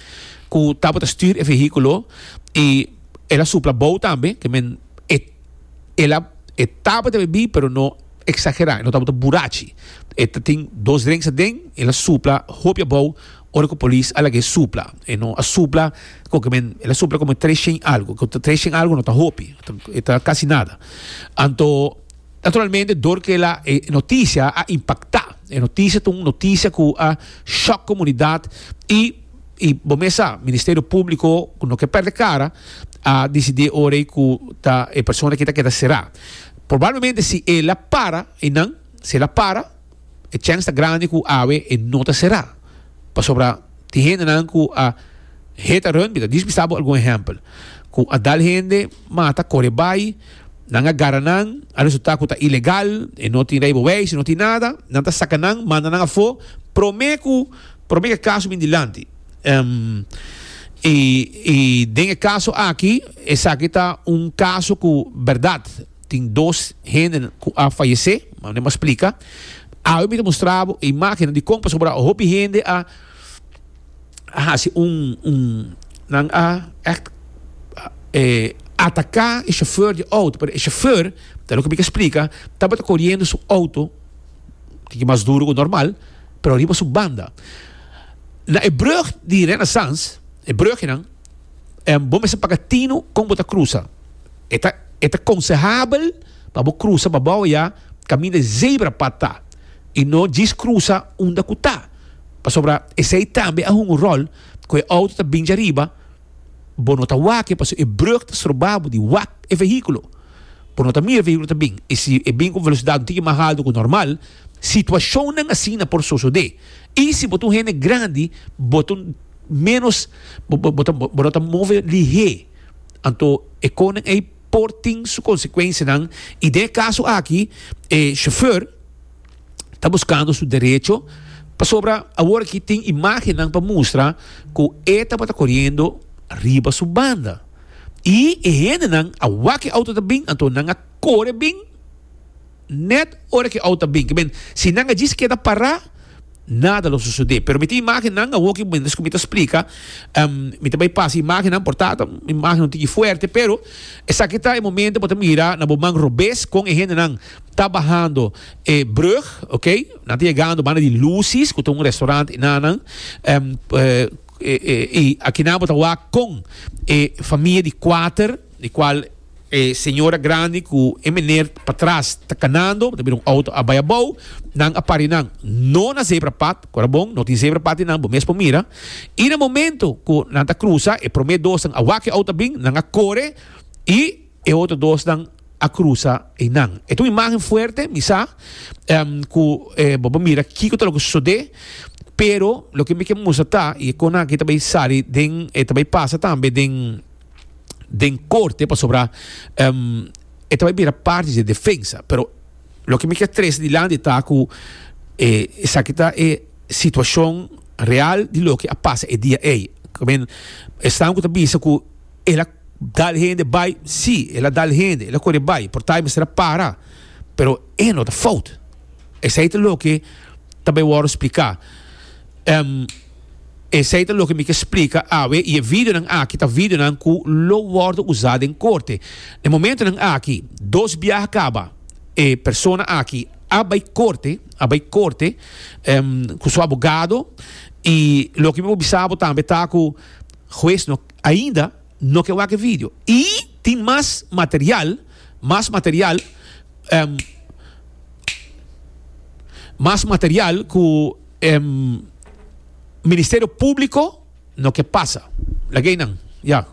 ku tabata stür e vehíkulo i el a supla bou tambe ke men e. el a e tabata bebí pero no eksagerá, e no tabata burachi. E ta tin dos drenks aden, el a supla hopi abou ora ku polis a laga e supla. E no a supla koke men, el a supla komo tres shen algu. Ku tres shen algu no ta hopi, e ta kasi nada. Anto, naturalmente dor ku el a e notisia a impaktá. E notisia ta un notisia ku a shòk komunidat i. I bo mes sa, Ministerio Públiko ku no ke pèrdè kara a disidí ora ei ku ta e persona ki ta keda será. Probablemente si e la para einan, si e la para, e chèns ta grandi ku awe e no ta será. Pasobra tin hendenan ku a heta rùntbi, ta dispistá bo algun ehèmpel, ku a dal hende, Ma a ta kore bai. Nan a gara nan, a resultá ku ta ilegal, e no tin rijbewijs, e no tin nada. Nan ta saka nan, manda nan afó promé ku promé ku e kaso bin dilanti. I i den e kaso aki, esaki ta un kaso ku bèrdat tin dos hende ku a fayesé, mane'er m'a splika. Awe mi ta mustrabo e imágennan di kon pasobra hopi hende a. a hasi un un nan a echt e ataka e shofeur di auto pero e shofeur ta loke mi ke splika tabata koriendo su auto tiki mas duru ku normal pero riba su banda na e brug di Renaissance e brugenan bo mester paga tino kon bo ta krusa e ta e ta konsehable pa bo krusa pa bo awe ya kaminda e zebra pad ta i no djis krusa unda ku ta Pasobra esei tambe a hunga un ròl, ku e outo ta bincha riba, bo no ta wak-e pasobra e brùg ta stroba bo di wak e vehíkulo. Bo no ta mira e vehíkulo ta bin, i si e bin ku un velosidat un tiki mas haltu ku normal, situashonnan asina por sosodé. I si bo ta un hende grandi, bo ta ménos, bo bo ta bo no ta move lihé. Anto e konan ei por tin su konsekuensianan, i den e kaso aki e shofèr, ta buskando su derecho pasobra awor aki tin imagennan pa mustra ku e tabata koriendo riba su banda. I e hendenan a wak e outo ta bin, anto nan a kore bin nèt ora ku e outo ta bin. Kiben, si nan a djis keda pará, nada lo sosodé. Pero mi tin imagennan awor aki, miéntras ku mi ta splika, mi ta bai pasa imagennan, por ta ta imagen un tiki fuerte, pero esaki ta e momentu ku bo ta mira na bo man robes kon e hendenan ta bahando E brug, ok. Nan ta yegando banda di Lucy's cu ta un restaurant y nanan. Y aki nan bo ta wak con e famia di cuater, di cual e señora grandi cu e meneer patras ta canando, bo ta mira un auto a bay abao, nan a pari nan no na zebra pad, cu a bon, no tin zebra pad di nan, bo mes por mira. Y na momento cu nan ta cruza, e prome dosnan a wak cu e auto a bin, nan a core y e otro dosnan a cruza eynan. E ta un imagen fuerte, mi sa cu bo por mira kico ta lo ke sucede, pero loke mi ke mustra ta, y e cosnan aki ta bay sali den, ta bay pasa tambe den, den corte, pasobra e ta bay bira parti di e defensa, pero loke mi kier trese dilanti ta cu esaki ta e situacion real di loke a pasa e dia ey. Esnan cu ta bisa cu el a Dal hende bai si el a dal hende el a kore bai por tai mester a para pero e no ta fout esei ta loke ta bai wòrdu splika em esei ta loke mi ke splika awe i e videonan aki ta videonan ku lo wòrdu usa den korte den momentunan aki dos biaha kaba e persona aki a bai korte a bai korte em ku su abogado i loke mi por bisa bo tambe ta ku. Hues no ainda no ke wak e video y tin mas material, mas material, mas material cu e Ministerio Publico no ke pasa. Laga ey nan, ya.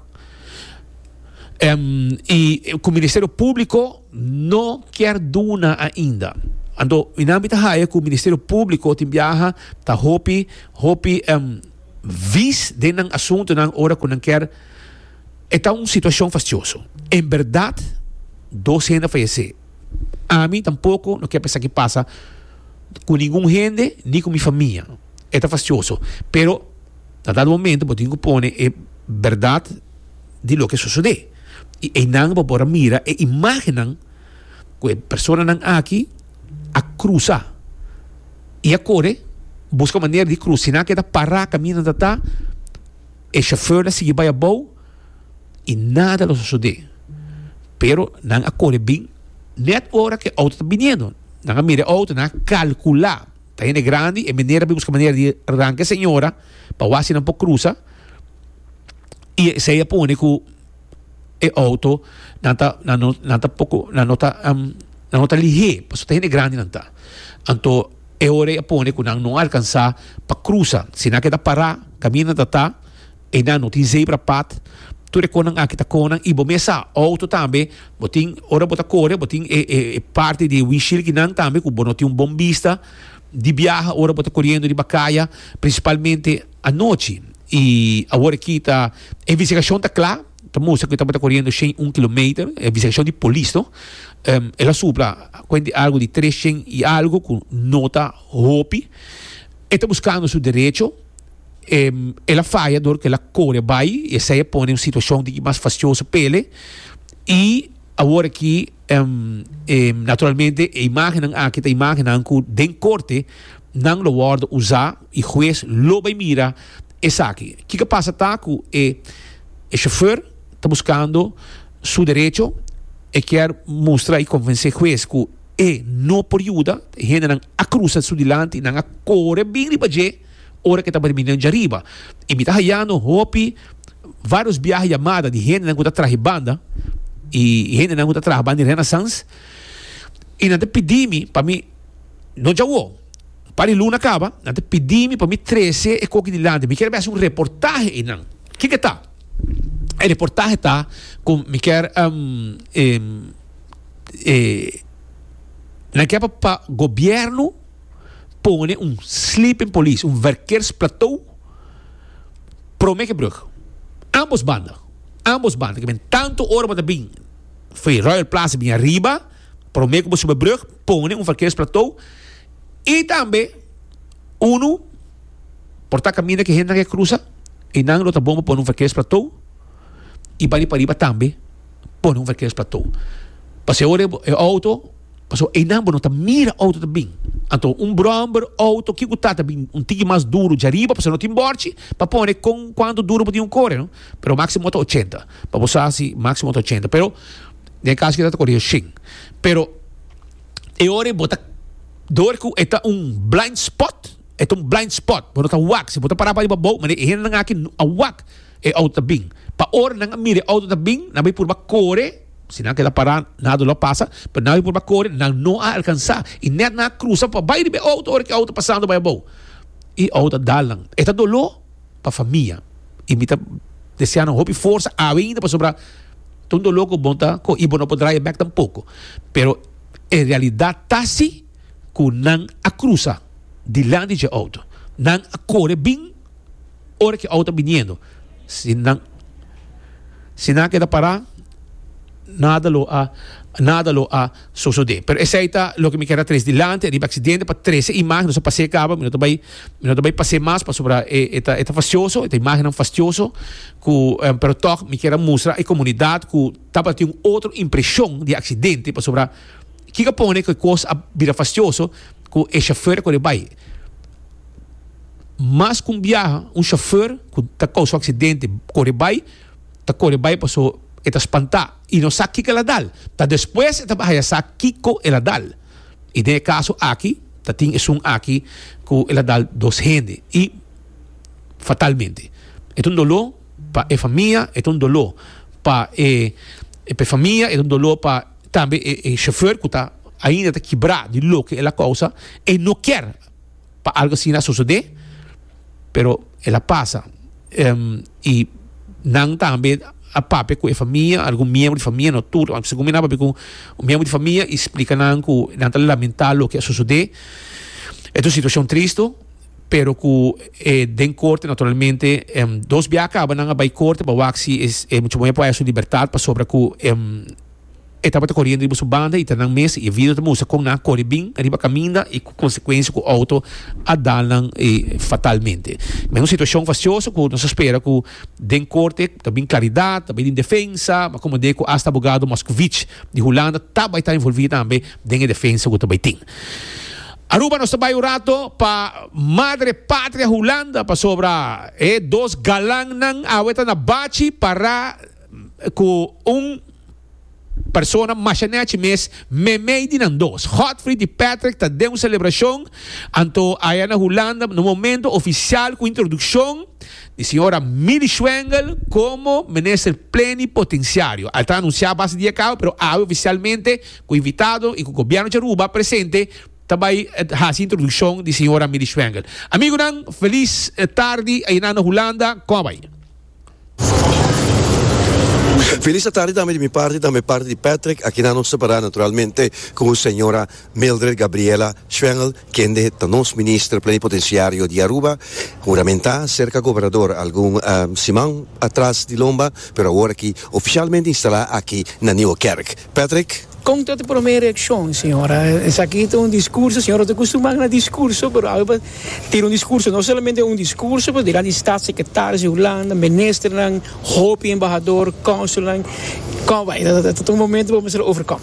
Y cu Ministerio Publico no kier duna ainda. Anto mi nan mi ta haya cu Ministerio Publico tin biaha ta hopi, hopi. vis den nan asuntunan ora cu nan kier. E ta un situacion fascioso. En berdad dos hende a fayece. Ami tampoco no kier pa esaki pasa cu ningun hende ni cu mi famia. E ta fascioso. Pero na dado momento bo tin cu pone e berdad di loke sosode. Y eynan bo por a mira e imagennan cu e personanan aki. a crusa y a core busca manera di crusa si nan a keda para cami nan ta ta e chauffeur a sigui bay abao y nada lo sucede pero nan a core bin net ora ki e auto ta biniendo nan a mira e auto nan a calcula ta hende grandi e meneer a bin busca manera di ranca e señora pa wak si nan por crusa y esey a pone cu. e auto nan ta nan no nan ta poco nan no ta nan no ta lihé pasobra ta hende grandi nan ta anto e ora e a pone cu nan no alcansa pa crusa si nan a keda para caminda ta ta y nan no tin zebra pad tur e cosnan aki ta cosnan y bo mes sa auto tambe bo tin ora bo ta core bo tin e e e parti di windshield ki nan tambe cu bo no tin un bon bista di biaha ora bo ta coriendo riba caya principalmente anochi. I awor aki ta e investigashon ta kla, ta mustra ku e tabata koriendo shen un kilometer, e investigashon di polis no. El a supla kuent di algu di tres shen i algu ku no ta hopi. E ta buskando su derecho. El a faya dor ku el a kore bai i esei a pone un situashon di ki mas fastioso pa ele. I awor aki naturalmente e imagennan aki ta imagennan ku den korte nan lo wòrdu usa. E hues lo bay mira esaki. Kiko pasa ta cu e chauffeur ta buscando su derecho, e kier mustra y convence e hues cu e no por yuda, e hendenan a cruza su dilanti y nan a core bin riba dje ora cu e ta barbininan dje riba. Y mi ta hayando hopi varios biaha yamada di hendenan cu ta traha e banda y hendenan cu ta traha banda di Renaissance y nan ta pidi mi pa mi no djawo. Pa di luna kaba, nan ta pidi mi pa mi trese e koki dilanti. Mi kier besa un reportahe einan. Kiko ta? E reportahe ta ku mi kier nan kier pa gobièrnu pone un sleeping police, un werkersplatou prome ke brug. Ambos banda, ambos banda. Ke men tantu ora bo ta bin for e Royal Plaza bin ariba, prome ku bo suba e brug, pone un werkersplatou. I tambe unu por ta kaminda ku e hendenan ke krusa, i nan lo ta bon pa pone un verkeers platou i bai di pariba tambe pone un verkeers platou. Pasobra e ora e outo, pasobra einan bo no ta mira e outo ta bin. Anto un bromber outo ke ku ta ta bin un tiki mas duru dja riba pasobra no tin bòrchi pa pone kon kuantu duru bo tin ku kore no. Pero máksimo ta ochenta. Pa bo sa si máksimo ta ochenta. Pero den e kaso aki ta kore oshen. Pero. E ora e bo ta door cu e ta un blind spot, e ta un blind spot, bo no ta wak. Si bo ta para pa riba bou, mira e hendenan aki no a wak e auto ta bin. Pa ora nan a mira e auto ta bin, nan bay purba core, si nan a keda para nada lo a pasa, pero nan a purba core, nan no a alcansa. Y net nan a crusa pa bay riba e auto ora cu e auto pasando bay abou. Y e auto a dal nan. E ta dolo. pa famia y mi ta desea nan hopi forsa awe pasobra ta un dolor cu bon ta coge y bo no por draaie back tampoco pero e realidad ta si cu nan a crusa dilanti dje auto nan a core bin ora cu e auto ta biniendo si nan si nan a keda para nada lo a nada lo a sosode pero esey ta loke mi kier a tres dilanti ariba aksidente pa trese imagen nos a pase kaba mi no ta bay mi no ta bay pase mas pasobra e e ta e ta fastioso e ta imagennan fastioso ku pero tog mi kier a mustra e komunidat ku tabata tin un otro impreshon di aksidente pasobra kiko a pone ku e kos a bira fastioso ku e shofèr a kore bay mas ku un biaha un shofèr ku ta kousa un aksidente kore bay ta kore bay paso e ta spantá. I no sa kiko el a dal. Ta despues e ta baha ya sa kiko el a dal. I den e kaso aki ta tin esun aki ku el a dal dos hende, i fatalmente. E ta un doló pa e famia, e ta un doló pa e e famia, e ta un doló pa tambe e e shofèr ku ta ainda ta kibrá di loke el a kousa. E no kier. pa algo asina sosode pero el a pasa y nan tambe a papia cu e famia algun miembro di famia no tur tambe segun mi nan a papia cu un miembro di famia y splica nan cu nan ta lamenta loke a sosode es un situacion tristo pero cu den corte naturalmente dos bia a caba nan a bay corte pa wak si e muchaboña por haya su libertad pasobra cu. E tabata koriendo riba su banda y ta nan mes y e video ta mustra con nan a kore bin riba caminda y cu consecuencia cu auto a dal nan fatalmente. Kib'é un situacion fascioso cu nos a spera cu den corte ta bin claridad, ta bay den defensa, ma como dei cu hasta abogado Moscovic di Hulanda ta bay ta envolvi tambe den e defensa cu ta bay tin. Aruba nos ta bay un rato pa madre patria Hulanda pasobra e dos galannan awe ta na bachi para Ku un persona masha nechi mes meimei di nan dos. Godfrey di Patrick ta den un selebrashon anto aya na Hulanda na un momento ofisial ku introdukshon di señora Millie Schwengel komo Minister Plenipotensiario. El ta anunsiá base dia kau pero awe ofisialmente ku invitado i ku Gobièrnu di Aruba presente ta bai hasi introdukshon di señora Millie Schwengel. Amigunan, felis tardi ayinan na Hulanda. Kòbai. Felis atardi tambe di mi parti, tambe parti di Patrick, aki nan nos separá naturalmente ku señora Mildred Gabriela Schwengel, kende ta nos Minister Plenipotenciario di Aruba, huramentá serka Gobernador algun siman atras di lomba, pero awor aki oficialmente instalá aki na Nieuwe Kerk. Patrick. Kon ta e promé reakshon, señora? Esaki ta un diskurso, señora ta kustumá na diskurso, pero awe pa tira un diskurso, no solamente un diskurso, pero delante di statssekretaris di Hulanda, ministernan, hopi embahador, konsulnan, kon bai, e ta un momento pa mester overkom.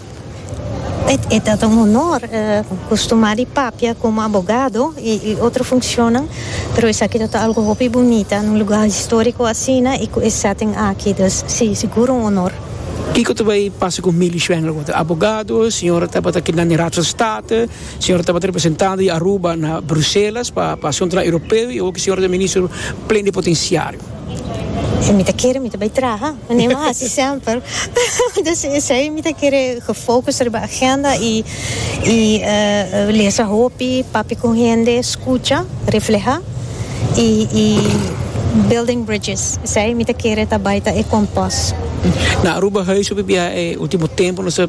E ta un honor kustumá di papia komo abogado i otro funkshonnan, pero esaki ta ta algu hopi bunita, na un lugá historiko asina i ku e setting aki, dus si, sigur un honor. Kiko ta bai pasa ku Milly Schwenk lo ku ta abogado, señora tabata keda na e Raad van State, señora tabata representante di Aruba na Bruselas pa pa asuntunan europeo i oki señora ta minister plen di potensiario. Si mi ta kere mi ta bai traha, mi no hasi semper, dus esei mi ta kere gefocus riba agenda i. y lesa hopi papia con hende scucha refleha y y building bridges esey mi ta kere ta bay ta e compost. Na Aruba Huis hopi bia e ultimo tempo nos ta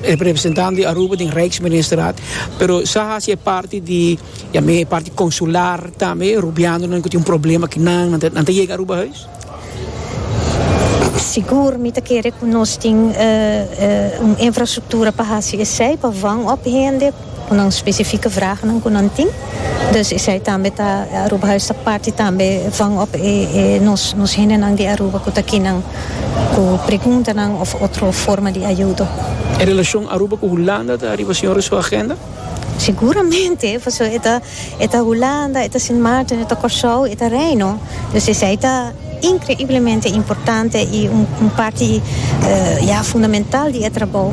representando di Aruba den Rijksministerraad pero sa haci e parti di yam'e e parti consular tambe rubianonan cu tin un problema aki nan nan ta yega Aruba Huis? Sigur mi ta kere ku nos tin un infrastruktura pa hasi esei pa vangup hende ku nan spesifike vrahnan ku nan tin. Dus esei tambe ta Aruba Huis ta parti tambe vangup e e nos nos hendenan di Aruba ku ta kinan ku preguntanan òf otro forma di ayudo. E relashon Aruba ku Hulanda ta riba señor e su agenda? Seguramente, pasobra e ta. E ta Hulanda, e ta Sint Maarten, e ta Kòrsou, e ta Reino. Dus esei ta inkreiblemente importante i un parti ya fundamental di e trabou.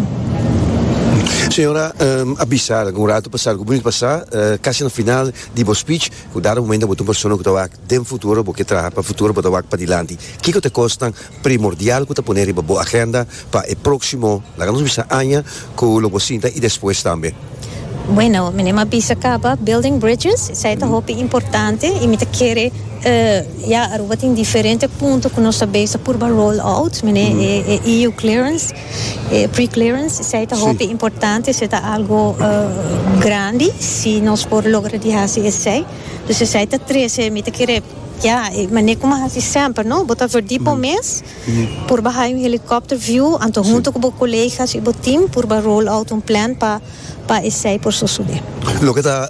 Señora, a bisa algu un ratu pasá, algu bonito pasá, kasi na final di bo spich, ku dado momento bo ta un persona ku ta wak den futuro, bo ke traha pa futuro, bo ta wak padilanti. Kiko ta kosnan? primordial cu ta pone riba bo agenda pa e proximo, laga nos bisa aña cu lo bo sinta y despues tambe. Bueno, mi nem a bisa caba, building bridges, esai ta hopi importante y mi ta kere, ya, Aruba tin diferente punto cu nos ta bezig purba roll out, mi ne e EU clearance, e pre-clearance, esai ta hopi importante, esai ta algo grandi, si nos por logra di haci esai, dus esai ta trece, mi ta kere. Ya, e mané ku mi a hasi semper, no. Bo ta verdí bo mes. Purba haña un helikòpter view, anto huntu ku bo kolegas i bo tim purba roll out un plan pa pa esei por sosodé. Loke ta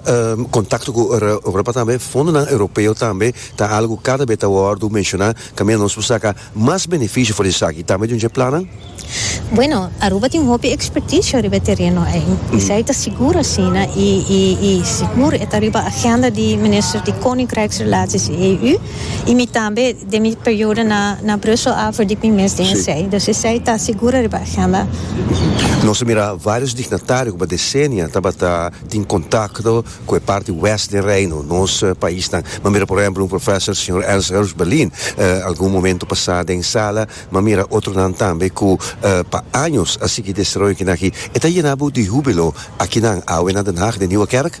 kontakto ku Europa tambe, fondonan Europeo tambe ta algu kada be ta wòrdu menshoná kaminda nos por saka. Mas beneficio for di esaki tambe dun dje plannan? Bueno, Aruba tin hopi experticio riba e tereno ei. Esaki ta sigur asina i i sigur e ta riba agenda di Minister di Koninkrijksrelaties i EU i mi tambe den mi periodo na na Brussel a for di mi mes den esei. Dus esei ta sigur riba agenda. Nos a mira varios dignatario cu pa decennia tabata tin contacto ku e parti wèst den Reino, nos paisnan. M'a mira por ehèmpel un profèser, señor Ernst Herbst Berlin, algun momentu pasá den sala, m'a mira otronan tambe ku pa años a sigui desteroyo kinan aki. E ta yená bo di húbilo akinan awe na Den Haag, den Nieuwe Kerk?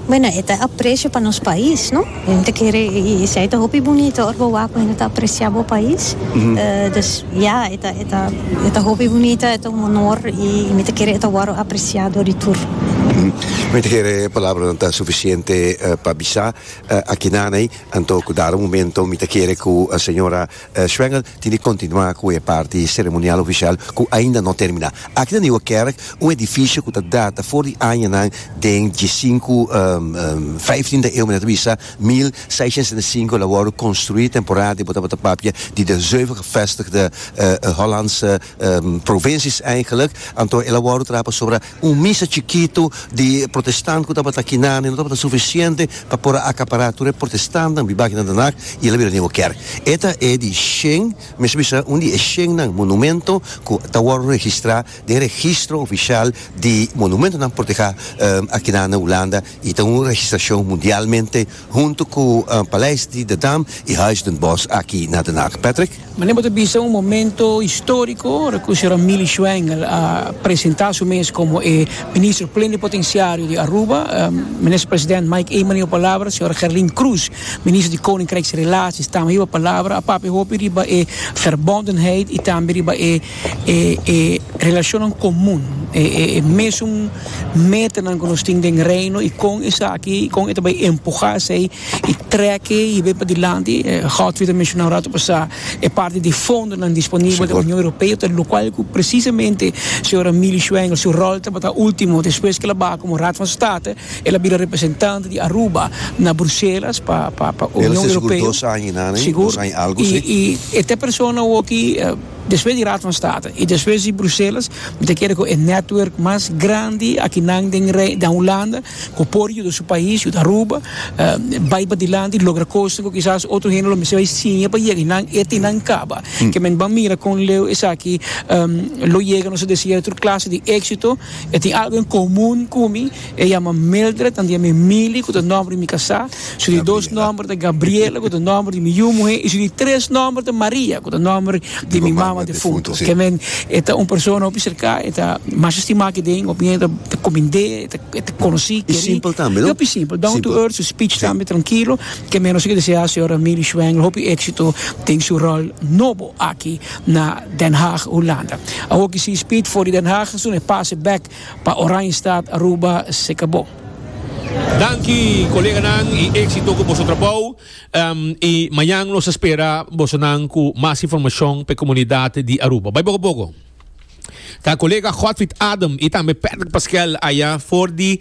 Bueno, e ta e aprecio pa nos pais, no? Bo ta kere esei e ta hopi bunito ora bo wak mira e ta aprecia bo pais dus ya e ta e ta e ta hopi bunita e ta un honor y mi ta kere e ta wòrdu aprecia dor di tur. Mi ta kere e palabranan ta suficiente pa bisa aki naney anto cu dado momento mi ta kere cu señora Schwengel tin di kontinuá ku e parti seremonial ofisial ku ainda no terminá. Aki na Nieuwe Kerk, un edifisio ku ta data for di añanan den dje sinku, vijftien, de eeuw, men a ta bisa mil seishent sesenta i sinku, el a wòrdu konstruí temporada di bo tabata papia di de zeuven gevestigde Hollandse provinsies, eigenlijk. Anto el a wòrdu traha pasobra Un misa chikitu di protestant ku tabata kinami no tabata sufisiente pa por a akapará tur e protestantnan riba aki na Den Haag i el a bira Nieuwe Kerk. E ta e di shen, mi mester bisa un di e shennan monumento ku ta wòrdu registrá den registro ofisial di monumentonan protehá akina na Hulanda i ta un registrashon mundialmente Hunto ku Paleis di de Dam i Huis den Bosch aki na Den Haag, Patrick. Mane bo ta bisa un momento historiko ora ku Sra. Millie Schwengel a presentá su mes komo e Minister Plenipotensiario di Aruba. Minister President Mike Eman a hiba palabra, Sra. Gerlin Croes, Minister di Koninkrijksrelaties, tambe a hiba palabra. A papia hopi riba e verbondenheid i tambe riba e. e e relashonnan komun, e e e mesun metanan ku nos tin den Reino i kon esaki kon e ta bai empuhá esei i trèk'e hib'e padilanti. Godfrey ta menshoná un ratu pasá e parti di fondonan disponibel den Union Europeo ta lokual ku presisamente señora Milly Schwengel su ròl tabata último despues ke el a baha komo Raad van State el a bira representant di Aruba na Bruselas pa pa pa Union Europeo sigur i i e ta e persona awoki. Despues di Raad van State y despues di Bruselas mi ta kere cu e network mas grandi akinan den den Hulanda cu por yuda su pais, yuda Aruba, bay padilanti logra cosnan cu kisas otro hende lo mester bay siña pa yega y nan e tin nan caba. Ke men ban mira con Leo esaki lo yega nos a desear tur clase di exito. E tin algo en comun cu mi. E yama Mildred, nan di ami Mili, ku ta nòmber di mi kasá. Su di dos nòmber ta Gabriela, ku ta nòmber di mi yu muhé, i su di tres nòmber ta Maria, ku ta nòmber di mi mama defunto. Ke men, e ta un persona hopi serká, e ta mas estimá aki den, hopi hende ta kumind'é, e ta konosí, kerí. I simpel tambe, no? I hopi simpel, down to earth, su speech tambe tranquilo. Ke men nos a kier deseá señora Mili Schwengel hopi éksito den su ròl nobo aki na Den Haag, Hulanda. Awor ki si speed for di Den Haag, asuna e pase bèk Pa Oranjestad Aruba se cabo. Danki coleganan y exito cu boso trabao y mañan nos ta spera bosonan cu mas informacion pa e comunidad di Aruba. Bay poco poco. Ta colega Godfried Adam y tambe Patrick Pasquel aya for di.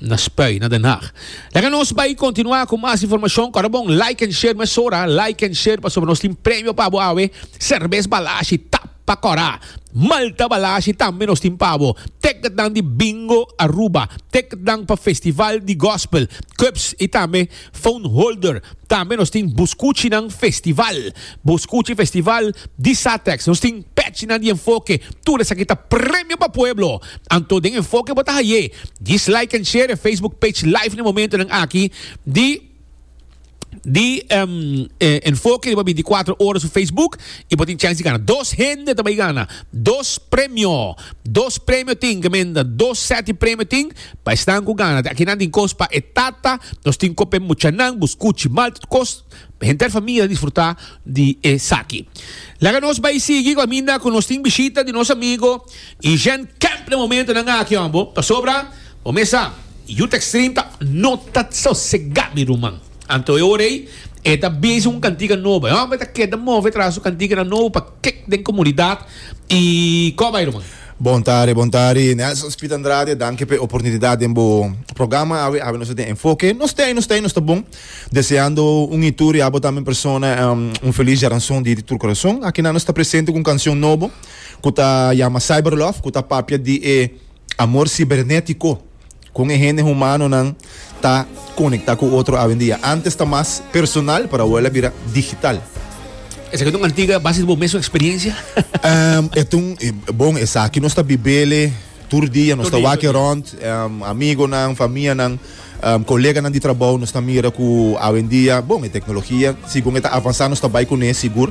na Spui na Den Haag. Laga nos bai continua cu mas informacion cora bon like en share mesora like en share pasobra nos tin premio pa bo awe Cervez Balashi ta pa cora Malta Balashi tambe nos tin pa bo ticketnan di Bingo Aruba ticketnan pa Festival di Gospel Cubs y tambe Phone Holder, tambe nos tin Buscuchinan Festival, Buscuchi Festival di Satex. Nos tin pechinan di enfoke, tur esaki ta premio pa pueblo. Anto den enfoke bo ta haye? Djis like en share e Facebook page live n'e momentonan aki di di enfoke riba binticuatro ora su Facebook y bo tin chance di gana. Dos hende ta bay gana dos premio, dos premio tin, ke menda dos set di premio tin. Pa esnan ku gana di aki nan tin kos pa e tata, nos tin kope muchanan, buskuchi, malta kos. Henter famia a disfrutá di esaki. Laga nos bai sigui kaminda ku nos tin bishita di nos amigo i Gen Camp na momentonan aki, hombo. Pasobra bo mes sa, Youth Extreme ta no ta sosegá, mi ruman. Anto e ora ei, e ta bisa un kantika nobo. E hòmber ta keda move tras su kantikanan nobo pa. Kek den komunidat i kò bai ruman? Bon tari, bon tari. Nelson Spit Andrade, danki pa e oportunidat den bo programa awe, awe nos ta den Enfoke. Nos t'ei, nos t'ei, nos ta bon. Deseando un i tur, i abo tambe en persona, un feliz Jaranson di di tur korason. Akinan nos ta presente ku un kanshon nobo ku ta yama Cyberlove, ku ta papia di e amor sibernetiko. Kon e hende humanonan ta konektá ku otro awendia? Ántes ta mas personal, pero awo'e el a bira digital. Esaki ta un antiga base di bo mes eksperensia? Um, e ta un, bon, esaki nos ta bib'ele tur dia, nos ta wak erònt, um, amigonan, famianan, um, koleganan di trabou, nos ta mira ku awendia, bon, e teknologia, sigun e ta avansá nos ta bai kuné sigur.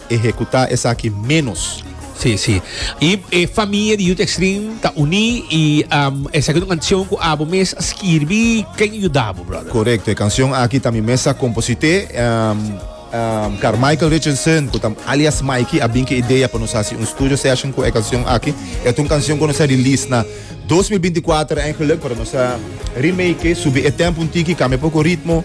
Ehekutá esaki ménos. Sí, sí. I e famia di Youth Extreme ta uní i um, esaki ta un kantion ku abo mes a skirbí. Ken a yuda bo, brother? Korekto. E kansion aki ta mi mes a komposit'é. Um, um, Carmichael Richardson, ku ta alias Mikey, a bin ku e idea pa nos hasi un studio session ku e kansion aki. E ta un kansion ku nos a release na 2024 eigenlik, pero nos a remake, subi e tempo un tiki, kambia poko ritmo.